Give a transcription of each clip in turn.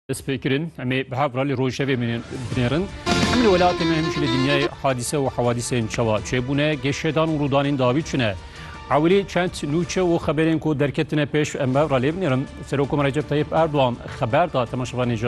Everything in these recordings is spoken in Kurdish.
Destpêkirin em ê bi hev re li rojevê binêrin. Em li welatê me hemîşî li dinyayê hadîse û hewadîsên çawa çêbûne, geşedan û rûdanên dawî çi ne. Ewilî çend nûçe û xeberên ku derketine pêş em bi hev re lê binêrin. Serokkom Recep Tayyip Erdogan xeber da temaşevanê ji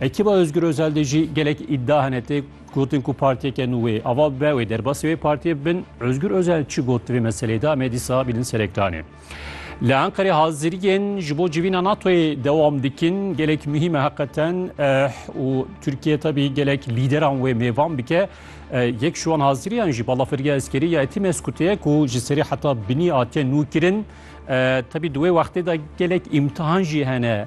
Ekiba Ozgur Ozel de jî gelek îdia hene tê gotin ku partiyeke nû wê ava bibe wê derbasî wê partiyê bin. Ozgur Ozel çi got di vê meseleyê de em ê dîsa bînin ser ekranê. Li Enqerê haziriyên ji bo civîna NATO'yê dewam dikin. Gelek muhîme heqeten û Tirkiye tevî gelek lîderan wê mêvan bike. Yek ji wan haziriyan jî balafirgeha eskerî ya Etî Meskutê ye ku ji serî heta binî hatiye nû kirin. Tevî di wê wextê de gelek îmtihan jî hene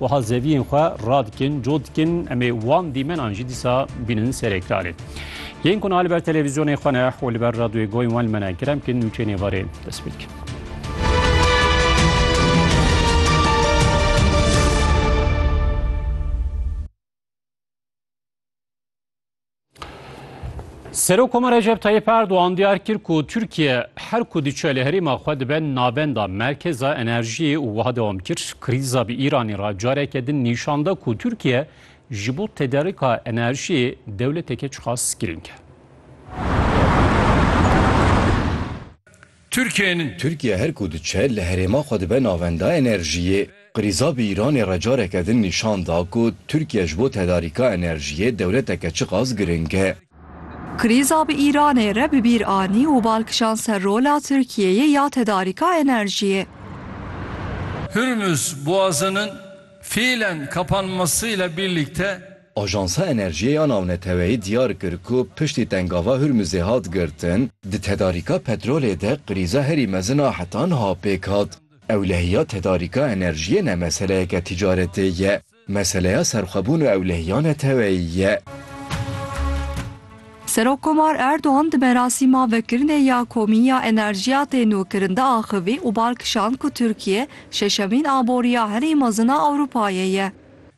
Wiha zeviyên xwe radikin, cot dikin, em ê wan dîmenan jî dîsa bînin serê karê. Yên ku niha li ber televîzyonê xwe ne û li ber radyoyê goyên wan li me ne, kerem bikin nûçeyên êvarê dest pê dikin. Serokoma Recep Tayyip Erdoğan diyar kir ku Türkiye her ku diçe li herêma xwe dibe navenda merkeza enerjiyê û wiha dewam kir krîza bi Îranê re careke din nîşan da ku Türkiye ji bo tederika enerjiyê dewleteke çiqas girîng e. Tirkiyên. Tirkiye her ku diçe li herêma xwe dibe navenda enerjiyê. Qirîza bi Îranê re careke din nîşan da ku Tirkiye ji bo tedarîka enerjiyê dewleteke çiqas giring e. Qirîza bi Îranê re bi bîr anî û bal kişand ser rola Tirkiyeyê ya tedarîka enerjiyê. Hurmuz Boğazı'nın fiilen kapanmasıyla birlikte, Ajansa Enerjiyê ya Navneteweyî diyar kir ku piştî tengava Hurmuzê hat girtin, di tedarîka petrolê de krîza herî mezin a heta niha pêk hat. Ewlehiya tedarîka enerjiyê ne meseleyeke tîcaretê ye, meseleya serxwebûn û ewlehiya neteweyî ye. Serokkomar Erdogan di merasîma vekirinê ya komî ya enerjiya tê nûkirin de axivî û bal kişand ku Tirkiye şeşemîn aboriya herî mezin a Ewropayê ye.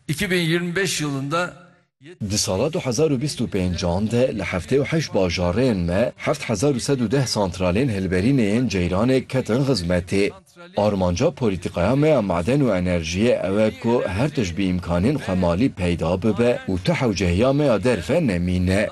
Îki bin yirmi beş yılında yê. Di sala du hezar û bîst û pênc an de li heftê û heşt bajarên me heft hezar û sed û deh santralên hilberînê yên ceyranê ketin xizmetê. Armanca polîtîkaya me ya maden û enerjiyê ew e ku her tişt bi îmkanên xwe malî peyda bibe û tu hewcehiya me ya derve nemîne.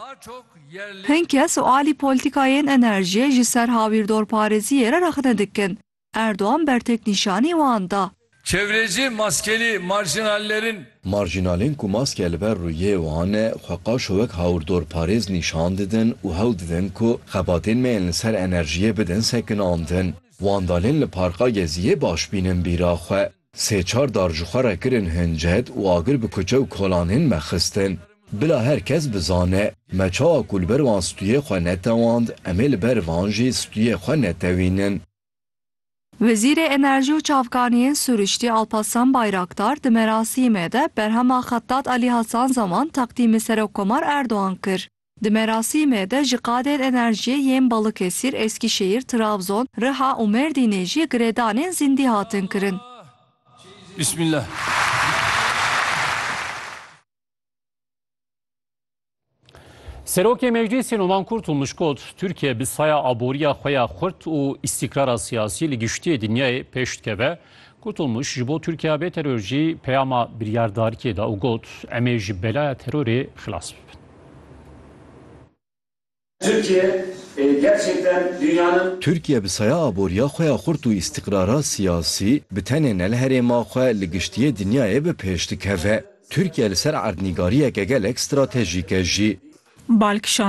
Hin kes û alî polîtîkayên enerjiyê ji ser hawîrdorparêziyê re rexne dikin. Erdogan bertek nîşanî wan da. Çevreci maskelî marjinallerin. Marjinalên ku maske li ber rûyê wan e xwe qaşo wek hawirdorparêz nîşan didin û hewl didin ku xebatên me yên li ser enerjiyê bidin sekinandin. Wan dalên li Parka Geziyê baş bînin bîra xwe. Sê çar dar ji xwe re kirin hincet û agir bi kuçe û kolan hên me xistin. Bila her kes bizane, me çawa ku li ber wan stûyê xwe netewand, em ê li ber van jî stûyê xwe netewînin. Wezîrê Enerjî û Çavkaniyên Sûriştî Alparslan Bayraktar di merasîmê de berhema Xettat Alî Hasan Zaman teqdîmê Serokkomar Erdogan kir. Di merasîmê de ji qadên enerjiyê yên Balıkesir, Eskişehir, Trabzon, Riha û Merdînê jî girêdanên zîndî hatin kirin. Serokê Meclîsê Numan Kurtulmuş got, Tirkiye bi saya aboriya xwe ya xurt û îstîkrara siyasî li giştî dinyayê pêş dikeve. Kurtulmuş ji bo Tirkiya bê teror jî peyama biryardarikê da û got, Em ê ji belaya terorê xilas bibin. Tirkiye gerçekten dünyanın. Tirkiye bi saya aboriya xwe ya xurt û îstîqrara siyasî bi tenê ne li herêma xwe li giştiyê dinyayê bi pêş dikeve. Tirkiye li ser erdnîgariyeke gelek stratejîk e jî. Balkişan